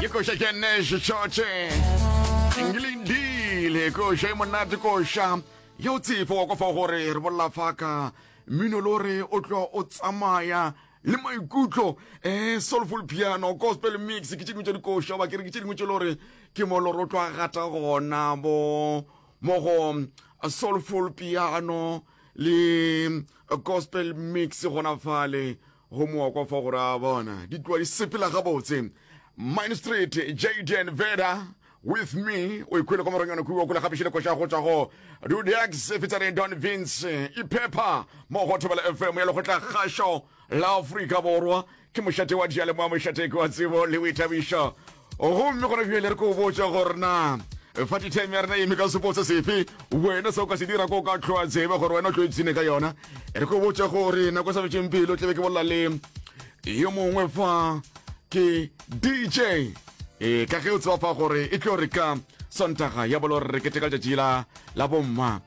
ke koša ke nese tšotše engelindile koša e monate koša ya o tsefo wa kwa fa gore re bolela faka mmino lo re o tlo o tsamaya le maikutlo um soulful piano gospel mix ke tše dingwe tša dikoša ba ke re ke tše dingwe tše le gore ke mo le gore o tlo a gata gona bo mo go uh, soulful piano le uh, gospel mix gona fale Go mooko fo go ra bona di tloa di sepela gabotse. Mine Street, Jaden Veda with me o ikhwele kwa moronyone kuwa kula gape šile koša go tšwa go Dudex featuring Don Vince iphepha mo go Thobela FM ya lekgotla kgašo la Afrika Borwa ke mošate wa dialemoa mošateki wa tsebo le boithabišo gomme gona bjale re ko botša gore na fa ditime ya rena e eme ka sepotse sefe wena se o ka se dira ko ka tlhoa tsebe gore wena o tlo ipsene ka yona re ko botša gore nako e sa fetseng pelo tlebe ke bolela le yo mongwe fa ke dj e ka ge o tseba fa gore e tlo re ka sontaga ya bolo re keteka letšatši la la bomma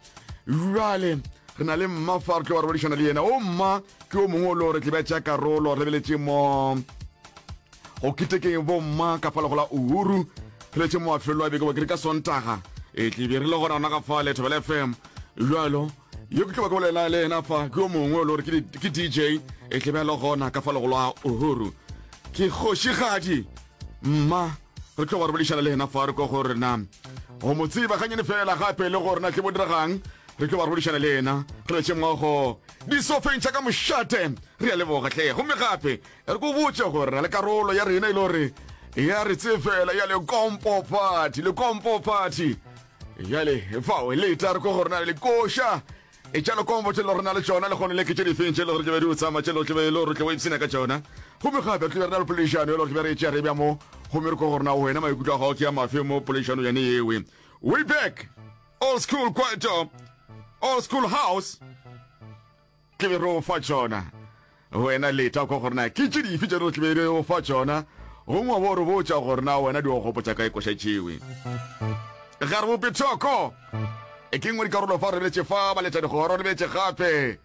jale re na le mma fa re tlo wa re bodišana le yena o mma ke o mongwe o lo re tlebe tša karolo re beletše mo go ketekeng bomma ka fa lego la uhuru pheletše moafelo a beke wa kere ka sontaga e tlebe re le gona gona ka fa lethobela fm bjalo yo ke tlo ba ke bolela le ena fa ke yo mongwe o le gore ke di- ke dj e tlebe a le gona ka fa lego la uhuru ke kgošigadi mma re tlo ba re boledišana le ena fa re ko go rena go mo tseba ganyane fela gape le gore na tle bo diregang re tlo ba re boledišana le ena re letše mmogo disofeng tša ka mošate re ya leboga tle gomme gape E re ko botse gore na le karolo ya rena e le gore ya re tsefela ya lekompo party lekompo party jale fao le eta re ko gore na le koša e tša lekompo tše le gore na le tšona le gone le ke tše difeng tše le gore tlebe di o tsamaya tše le gore tlebe le gore tle o ipsena ka tšona gomme gape tlebe re na le polešano e le gore tlebe re e tšea re bja mo gomme re ko gore na wena maikutlo a gago ke ya mafe mo polešano yane yewe way back old school kwaito old school house Ke be re o fa tšona. Wena leta kwa gore na ke tše dife tše re tlebe re o fa tšona, gongwe wa bo re botša gore na wena di o gopotša kae koša tšewe. Ga re bope thoko. E ke nngwe dikarolo fa re lebetše fa, ba leta digoro, lebetše gape.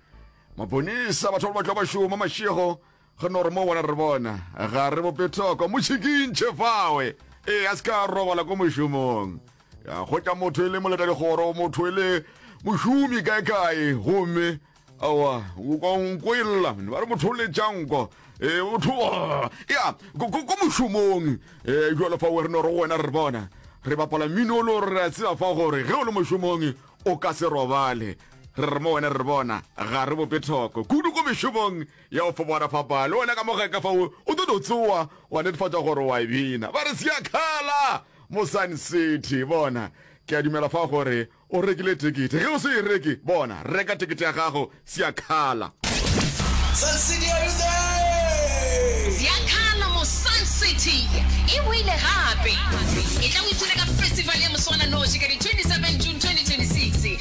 Maponisa, batho ba ba tlo ba šoma mašego, Go no re mo bona re bona, ga re bope thoko, mo tšhikintšhe fawe, ee, a se ka robala ko mošomong. Ya kgotša motho e le moletadikgoro, motho e le mošomi kae-kae, gomme awa nko e lla ba re motho o letšanko ee motho ya ko mošomong ee jalo fawe re no re wena re bona re bapala mmino o le gore re a tseba fa gore ge o le mošomong o ka se robale re re mo wena re bona ga re bope thoko kudu ko mešomong Ya go fobora fa paa, le wena ka mo geka fa o, o tlo no tsowa, wa netefatša gore wa e bina. Ba re, Se a khala! Mo Sun City. Bona? Ke a dumela fa gore o rekile tekete. Ge o se e reke, bona, reka tekete ya gago. Se a khala! Sun City, are you there? Se a khala! Mo Sun City. E boile gape. Etla o ithute ka festival ya moswananoši ka di 27 June 2026.